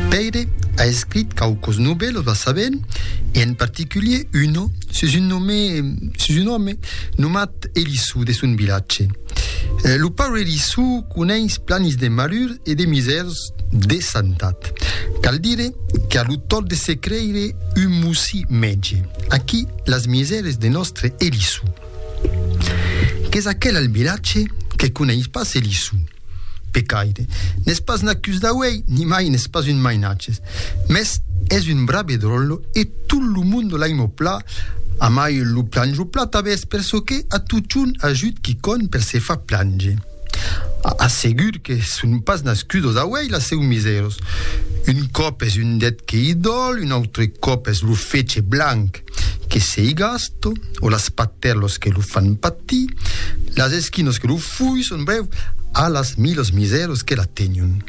Pèire a escrit quauques novèlas la sabent, e en particulier una sus un nome, sus un òme nomat Elissou de son vilatge. Lo paure Elissou coneis planis de malur e de misèrs de santat. Cal dire qu'a lo tòrt de se creire un mossí mètge. Aquí las misères de nòstre Elissou. Qu'es aquel al vilatge que coneis pas Elissou? Pecaire, n'es pas n'acus d'auei, nimai n'es pas un mainatges, mès es un brave drollo e tot lo monde l'aimo pla, amai lo planjo pla tabès per çò que a totjorn ajut quicòm per se far plange. A segur que son pas nascudos d'auei la seu miseros. Un còp es un det que i dòl, un autre còp es lo fetge blanc. Que sei gasto, o las patèrlos que lo fan patir, las esquinos que lo fuisson, brèu, a las milos miseros que la tegnon.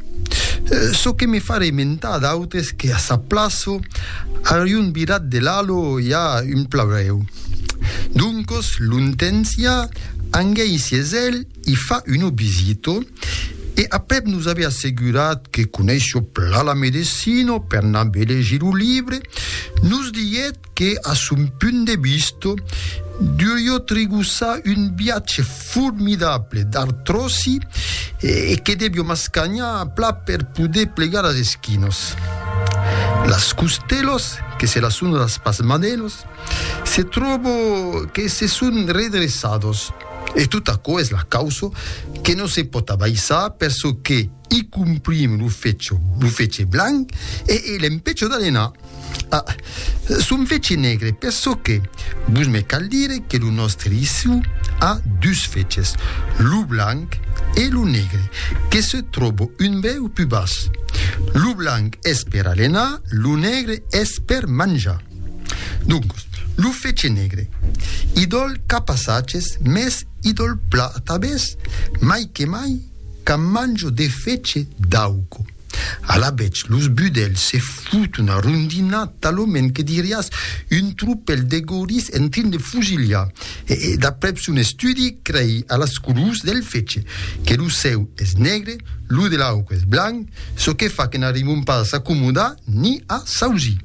Çò que me fa rementar d'autres que a sa plaço, a rion virat de l'alo i a un plaurèu. Doncos, lontens i a, anguèi sies èl, i fa una visita e aprèp nos ave assegurat que coneissia plan la medecina per n'ave legir lo libre, nos diguèt que a son punt de vista duriá trigossar un viatge formidable d'artròsi e que deviá m'ascanhar a plat per poder plegar las esquinas. Las costelas, que se las son las pas manelas, se tròba que se son redressadas. E tot aquò es la causa que no se pòt abaissar per çò que i complim lo fetge, lo fetge blanc e e l'empècho d'alenar. A, son fetge negre per çò que, vos me cal dire que lo nòstre Issou a dus fetges, lo blanc e lo negre, que se tròba un brèu pus bas. Lo blanc es per alenar, lo negre es per manjar. Doncos, lo fece negre, idòl cap a saches, mès idòl pla atabès, mai que mai quand manjo de fece d'auco. Alavetz, los budèls se fot una rondina talament que diriás un tropèl de gorís en trin de fusilhar, e, d'aprèp son estudi, crei a las colors del fece, que lo sèu es negre, lo de l'auco es blanc, çò que fa que n'arribon pas a s'acomodar ni a s'ausir.